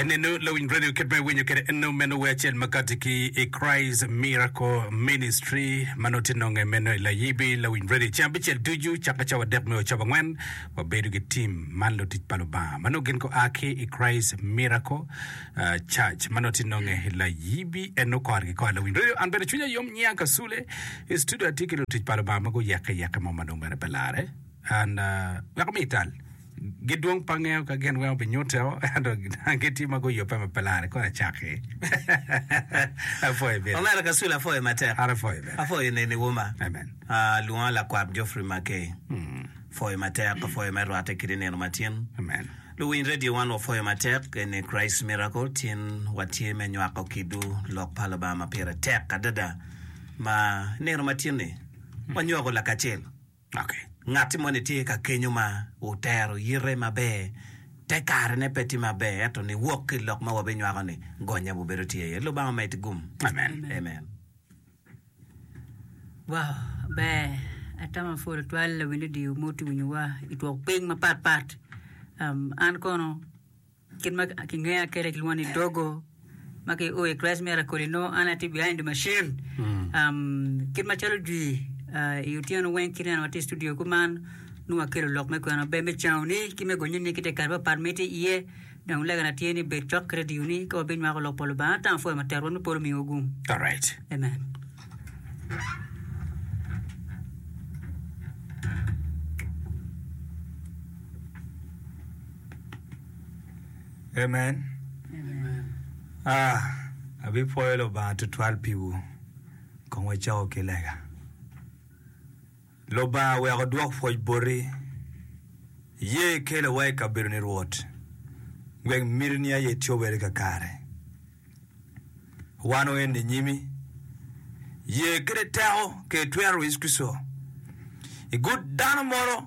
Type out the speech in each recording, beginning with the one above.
En eno lawiny radio kit ma iwinyo kede eno meno we acel makati ki i Christ Miracle Ministry ma nongo tye nonge meno i layibi lawiny radio ceng abicel ducu caka cawa adek me ocobo angwen wabedo ki tim man lutic pa Lubanga ma nongo gin gua ki i Christ Miracle ah, Church ma nongo tye nonge i layibi eno kor ki kor lawiny radio an bene cwinya yom niang ka sule i studio atye ki lutic pa Lubanga ma guyekke yekke mo ma nongo bene pe lare and ah, wek ami ital Gidwong pe angeyo ka gin weng obinyuto ento gitye ma guyubbe ma pe lare kong acakki. Apwoyo bino. Omera Kasule apwoyo matek. An apwoyo bene. Apwoyo neni Wuma. Amen. Ah, lwonga lakwat Geoffrey Mackay. Apwoyo matek, apwoyo me rwatte kidi nino ma tin. Amen. Luwiny radio wan wapwoyo matek, eni Christ Miracle, tin watye me nywako kidu lok pa Lubanga ma pire tek adada ma nino ma tin-ni wanywako lakacel. Ngatti moni tye ka kenyo ma otero yite maber, te kare ne pe tye maber ento ni wok ki ilok ma wabinywako ni gonye bu bedo tye aye. Lubanga omed gum. Amen. Wow ber atama pol atwal lawil radio mo tye winyo wa itwok ping mapat pat an kono. Kit ma kingeya kwede kilwongo ni dogo ma ki o i Christ Miracle i nongo an atye behind the machine. Um, kit macalo jwi uh, i otyeno weng kit neno watye i studio kuman nongo wakelo lok me kwena maber me caoni ki me gonyini ki te kare papat ma itye iye dong legana tye ni bed cok ki radioni ka wabinywako lok pa Lubanga ata apwoyo matek Rwot me polo omiwa gung. Alright. Amen. Amen. Ah, abipwoyo Lubanga tutwal piwu. Kong wacako ki lega. Lubanga wek odwok pwoc boti. Iye ikelawa i kabedoni Rwot, wek mitini aye cobere kakare. Wan oen inyimi. Ye kede teko kede twero Yecu Kricito igut dano moro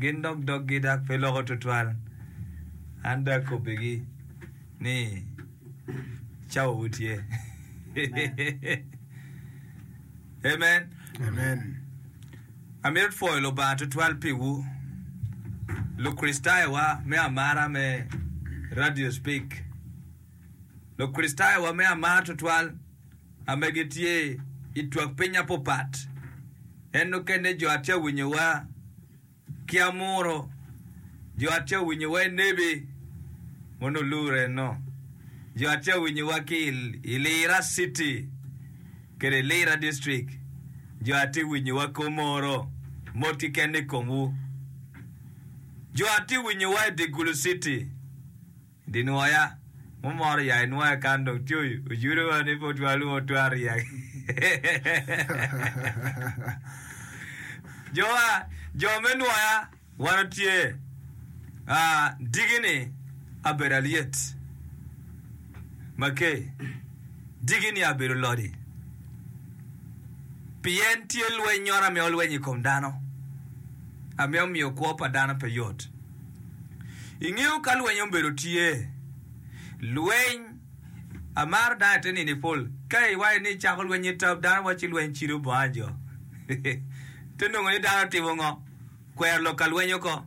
Gin dok doggi dok pe loko tutwal. An dong akobbigi ni, Cawawu tye. Amen. Amen. Amito pwoyo Lubanga tutwal piwu, Lukricitayowa me amara me Radio Speak. Lukricitayowa me amara tutwal. ame gitye i twak piny apopat, en nukene jo atye awinyowa ki amuro, jo atye awinyowa i nebi ma onongo luro enno, jo atye awinyowa ki i Lira city kede i Lira district, jo atye winyowa Komoro, mot keken ikomwu, jo atye winyowa i Digulu city. Di nwoya mo moro ya i nwoya kan dong tyoy ojudo wa ni pe otwero lwongo twero ryek. Jo wa jo me nwoya wan otye aa digi ni abedo alyet ma ke digi ni abedo lodi pien tye lweny nyoro amiyo lweny i kom dano amiyo miyo kwo pa dano pe yot. Ingeyo ka lweny obedo tye. Lweny amaro dano ite nini pol ka iwaco ni icako lweny i tab dano waco ci lweny cido bonga jo ite nongo ni dano otimo ngo kwero lok ka lweny oko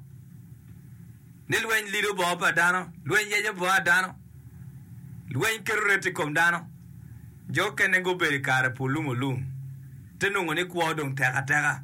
ni lweny lido bongo pa dano lweny yeco bonga dano lweny keto ret i kom dano jo okene gubedo i kare pu lung olung ite nongo ni kwo dong tek ateka.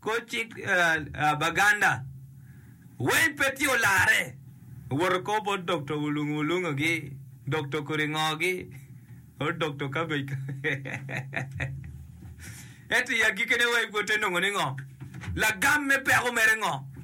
Kor cik Baganda, Wayne Petty olarre, owoto oko bot Dokto Wulungu Wulungogi, Dokto Kuringogi, or Dokto Kabej Kabej. Ento i agikine Wayne Petty onongo ni ngo? Lagam me peko mere ngo?